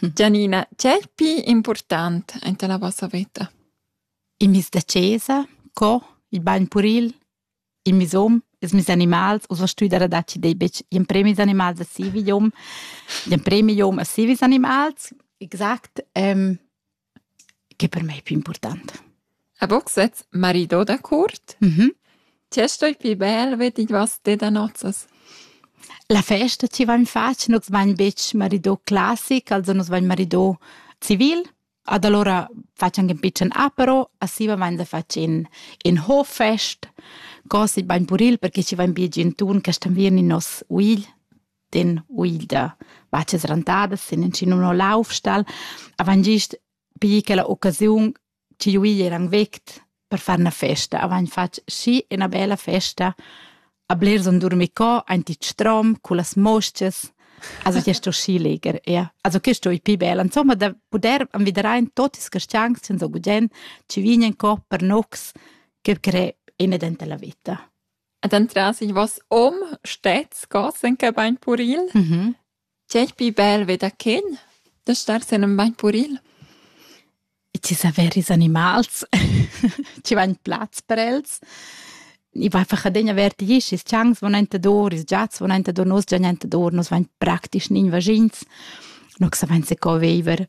Gianina, tg'è il pli impurtant enta la vossa veta? Il mis da chesa, co, il bagn puril, il misum, ils mis animals, ussa stu dar adatg e dei betg gl'emprem ils animals a siu idiom, gl'emprem idiom a siu ils animals. Exact. che per mei pli important. A boxets marido da curt? Mhm. Ti stoi pli bel vedi was te da nozzas. La festa ci va in faccia, nus vain betg marido classic, also nus vain marido civil, ad allora facciamo un piccolo apero, assiva vain da facciamo in hoffest, così vain puril perché ci vain più gentun che stan vier in nos uigl. den uida vaccia srantada sin in cin uno laufstall avant gist pi quella occasiun chi uigl eran vect per far una festa avant fatg schi ina bella festa a blers on durmir co aint it strom cu las mosches also che sto schi leger ja also che sto i pi bella insomma da puder anviderain tot is castiangs sen so gudien ci vignen co per nox che crei ina dentella vita Ed entras ich was om stets gassen che bain puril. Mhm. C'è più bel veda chen da star sen en bain puril. E ci saveris animals, ci va in plaz per els. I va einfach adegna verdi isch, is chans von entador, is giats von entador, nos già entador, nos vain praktisch nin vagins. No sa vain se co veiver.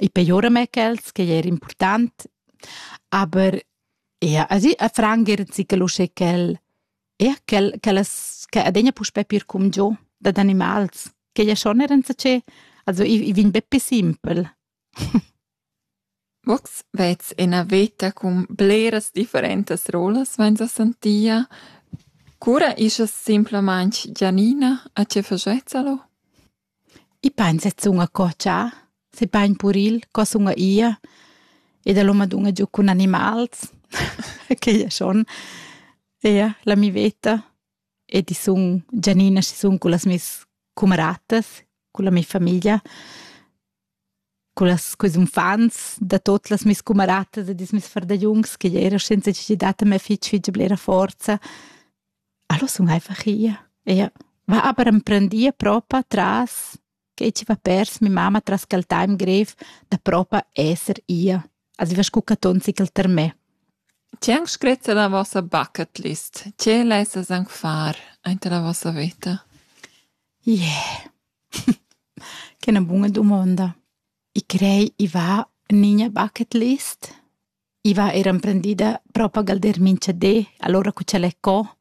I pejora mê quels ch'ei er important, aber ja, also a franger zichel uschè ch'el ja, ch'el ch'ellas che adegna puspè pir cumgiò dad animals, ch'ei ja schon er enzatgé, also i i vegn be pü simpel. Vox vez ina veta cun bleras differentas rolas vainsa sentia. Cura ischa simplamaing Gianina a che fagetsa lo? I pain sezun a cotschar, se pain puril co sun ia ed el ho madunna giu cun animals, quei è schon eir la mi veta ed i sun Gianina chi sun cullas meis cumaratas, culla mia famiglia. Cullas quels unfants da tot las mias cumaratas e dils meis fardagliuns ch'igl era senza necessitad da me fitg fitg blera forza. Allo sun einfach ia. Ea va aber emprendia propa tras quei chi va pers mia mamma tras quel time grev da propa esser ia. Als iva scu catonzi ch'el ter me. Tg'è anc scretta la vossa bucket list? Tg'è lessas anc far aint la vossa veta? Ie. Yeah. Che è 'na buna dumonda. I crei i va en iina bucket list. I va eir emprendida propa galder minchadé, alura cu ch'el è co.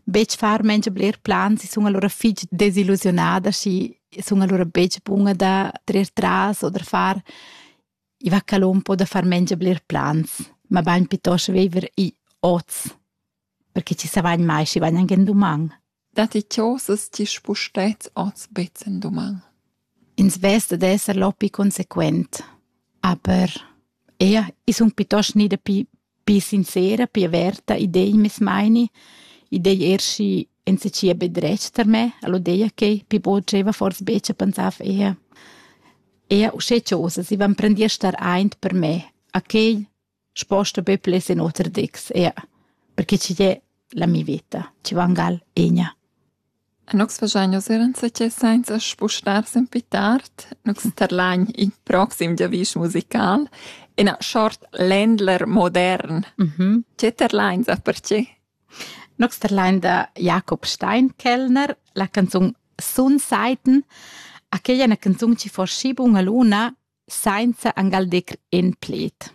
Betg far mengia bler plans, i sun alura fich desillusiunada, schi sun alura betg buna da trer tras o da far I va ca l'on po da far mengia bler plans, mabain pietost viver i oz, perche chi savagn mai schi vagn anc en duman. Datti chosas ti spustez oz bez en duman? Ins vess da esser lopi consequent, aber ea, i sun pietost ni dapi Pii sincera, pii averta, i dei meis meini, i dei er schi ensatgia be dretg tar me, el ho deia quai, pii bod gieva fors be cha pensava eir. Eir uschè chosas, i van prendì a star aint per me, a quai sposta be pleds in oter dics, eir, perche chi è la mia vita, chi va angal egna. Nus fagein nus er enzatgei sainza spustar sen pi tard. Nus terlain il proxim giavisch musical, ina short Ländler modern. Tge terlain sa pertgei? Nus terlain da Jakob Steinkellner la canzun Sunseiten, aquella è una canzun che forschi bun a luna sainza angal decl en pled.